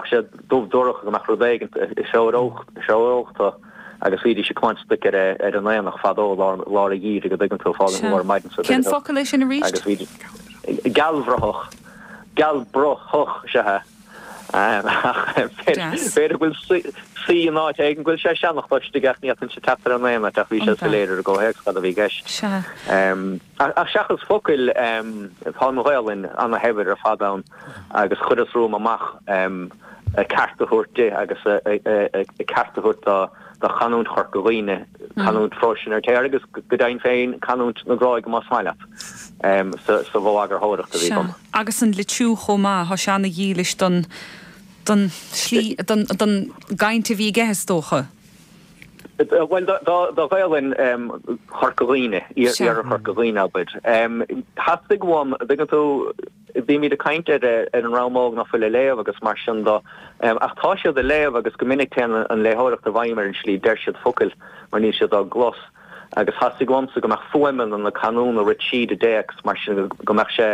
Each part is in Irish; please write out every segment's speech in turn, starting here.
Tá sé dubh dorcha go mbeadh rud éigint sioctha agus bhídís ag caint stuic ar an aonach fadó lár a' Gheimhridh a' dtuigeann tú, fáinne an lae ar maidin sa Cén focal é sin arís? agus bhídís, gealbhrathach, gealbhrathach, sea. Deas. B'fhéidir go bhfuil sé in áit éigin, go bhfuil sé seanachta istigh ach ní fhéadfainnse teacht air in aon áit ach bhí sé soiléir ón gcomhthéacs cad a bhí i gceist. Sea. Ach seachas focail, tá an Ghaelainn ana-shaibhir ar fad ann agus chuireas romham amach, am, a ceart a thabhairt di agus a ceart a thabhairt do chanúint Chorca Dhuibhne, canúint phróis an Fheirtéaraigh agus, go deimhin féin, canúint na Gráige más maith leat, sa bhfo-eagarthóireacht a bhí agam. Sea, agus an litriú chomh maith, tá sé ana-dhílis don tslí, don gcaint a bhí aige, is dócha. Bhuel, do Ghaolainn Chorca Dhuibhne, iarthar Chorca Dhuibhne, abair. Theastaigh uaim, an dtuigeann tú, bhímid ag caint ar an dream óg ná fuil ag léamh agus mar sin de, ach tá siad a' léamh agus go minic téann an léitheoireacht i bhfeidhm ar an slí a deir siad focail mar níl siad á gclos. Agus theastaigh uaimsa go mbeadh fuaimeanna na canúna rite tríd an dtéacs mar sin go mbeadh sé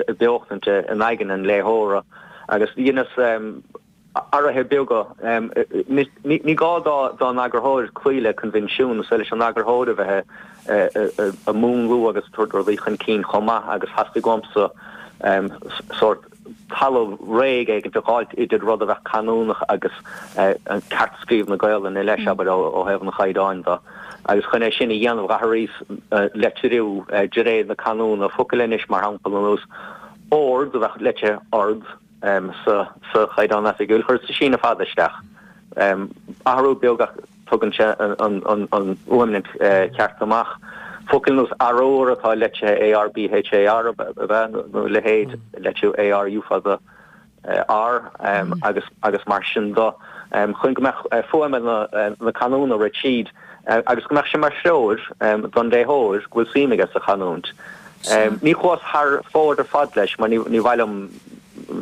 ag beochaint in aigne an léitheora agus dheineas, athruithe beaga. Ní gá d'aon eagarthóir cloí le coinbhinsiún, is féidir leis an eagarthóir a bheith ag múnlú agus ag tabhairt rudaí chun cinn chomh maith agus theastaigh uamsa sórt talamh réidh éigint a dh'fháilt idir rud a bheadh canúnach agus ceartscríobh na Gaolainne leis, abair, ó thaobh an chaighdeáin de. Agus chun é sin a dhéanamh d'athraíos litriú de réir na canúna focail anois, mar shampla, ar nós ard a bheadh litrithe ord, sa Chaighdeán Oifigiúil. Chuireas síneadh fada isteach. Athrú beag ach tugann sé an fhuaimint cheart amach. Focail nós arúr atá litrithe AR BHAR a bheadh a leithéid litrithe ARU fada R agus mar sin de. Chun go mbeadh fuaimeanna na canúna rite tríd, agus go mbeadh sé mar threoir don léitheoir go bhfuil suim aige sa chanúint. Ní chuas thar fóir ar fad leis mar níor mhaith liom,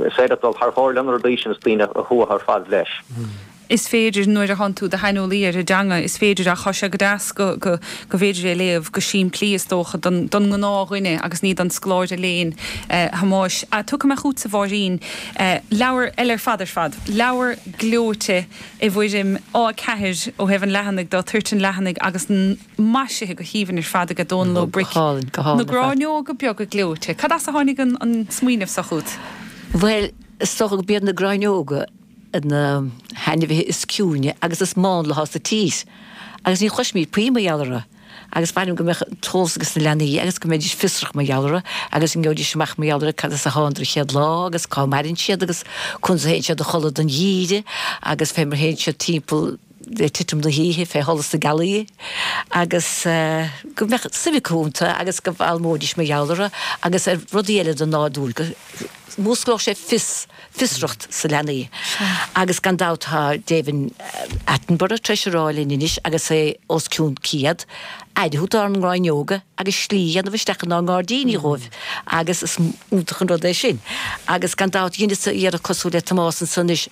is féidir dul thar fóir leis na rudaí sin is daoine a thuirsiú ar fad leis. Is féidir, nuair a tánn tú id shaineolaí ar an dteanga, is féidir ach tá sé go deas go mb'fhéidir é a léamh go simplí is dócha don ngnáthdhuine agus ní don scoláire léinn. Thomáis, Tiocfaidh mé chughat-sa, a Mháirín, leabhar eile ar fad ar fad, leabhar gleoite, i bhfoirm A4 ó thaobh an leathanaigh de, toirt an leathanaigh agus maisithe go haoibhinn ar fad aige, Dónal Ó Bric. Na gráinneoga beaga gleoite. Cad as a tháinig an smaoineamh seo chugat? Bhuel, is dócha gurb iad na gráinneoga na hainmhithe is ciúine agus is mánla atá sa tír agus ní chloisimid puinn mar gheall orthu. agus ba mhaith liom go mbeadh an t-eolas ages na leanaí agus go mbeidís fiosrach mar gheall orthu agus go ngeobhaidís amach mar gheall ar cad as a thánadar an chéad lá agus cá maireann siad agus conas a théann siad a chodladh don gheimhreadh agus fé mar a théann siad timpeall le titim na hoíche fé sholas na gealaí agus go mbeadh suim acu iontu agus go bhfoghlaimeoidís mar gheall orthu agus ar rudaí eile den nádúr go Músclódh sé fios, fiosracht sna leanaí. Agus gan dabht tá David Attenborough tar éis a rá linn anois agus é os cionn 100, aire a thabhairt dár ngráinneoga agus slí a dhéanamh isteach inár ngairdíní dhóibh agus is iontach an rud é sin. Agus gan dabht dheineas-sa iarracht cosúil le Tomás anso anois.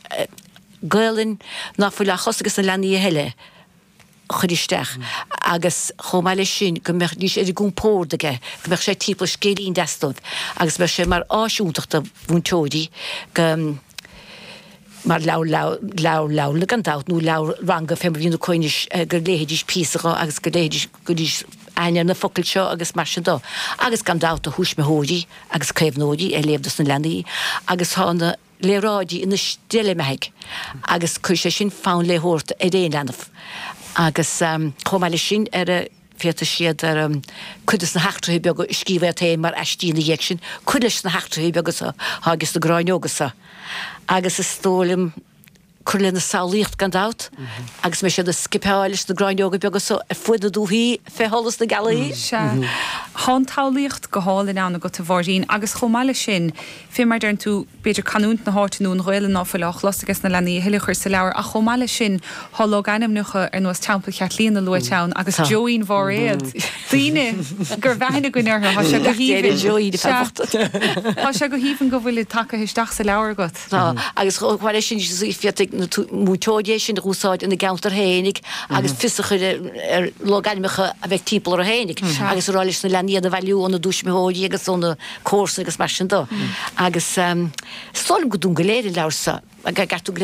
Gaelainn ná fuil á chlos ages na leanaí a thuilleadh. chur isteach agus chomh maith leis sin go mbeidís ar a gcompórd aige go mbeadh sé timpeall scéilín deas dóibh agus bheadh sé mar áis iontach do mhúinteoirí go mar leabhar leabharlainne gan dabht nó leabhar ranga fé mar a bhíonn acu anois go léifidís píosa dho agus go gcuirfidís aithne ar na focail seo agus mar sin de agus gan dabht do thuismitheoirí agus caomhnóirí é a léamh dos na leanaí agus tá na léaráidí ina steillbheathaidh agus cuirfidh sé sin fonn léitheoireachta ar aon leanbh agus chomh maith leis sin ar féadfaidh siad ar cuid de sna heachtraithe beaga a scríobh iad féin mar aistí ina dhiaidh sin, cur leis na heachtraithe beaga atá ages na gráinneoga so agus is dóigh liom cur lena samhlaíocht gan dabht, agus beidh siad ag scipeáil leis na gráinneoga beaga so ar fuaid na dúthaí fé sholas na gealaí. Sea. Thá an tsamhlaíocht go hálainn ann agat, a Mháirín, agus chomh maith leis sin, fé mar deireann tú, b'fhéidir canúint na háite nó an Ghaelainn ná fuil á chlos ages na leanaí a thuilleadh a chur sa leabhar, ach chomh maith leis sin, thá logainmneacha ar nós Teampall Chaitlíona luaite ann agus Joeín Bhairéad, daoine go raibh aithne againn orthu, thá sé go haoibhinn. Sea. Thá sé go haoibhinn go bhfuilid tacaithe isteach sa leabhar agat. Tá, agus chomh maith leis sin, féadfaidh na múinteoirí é sin a úsáid ina gceantar féinig agus fios a chur ar logainmneacha a bheidh timpeall orthu féinig agus a rá leis na leanaí iad a bhailiú óna dtuismitheoirí agus ó na comharsana agus mar sin de. Agus is dóigh liom gur dúinn go léir an leabhar seo, a gceartú go léir.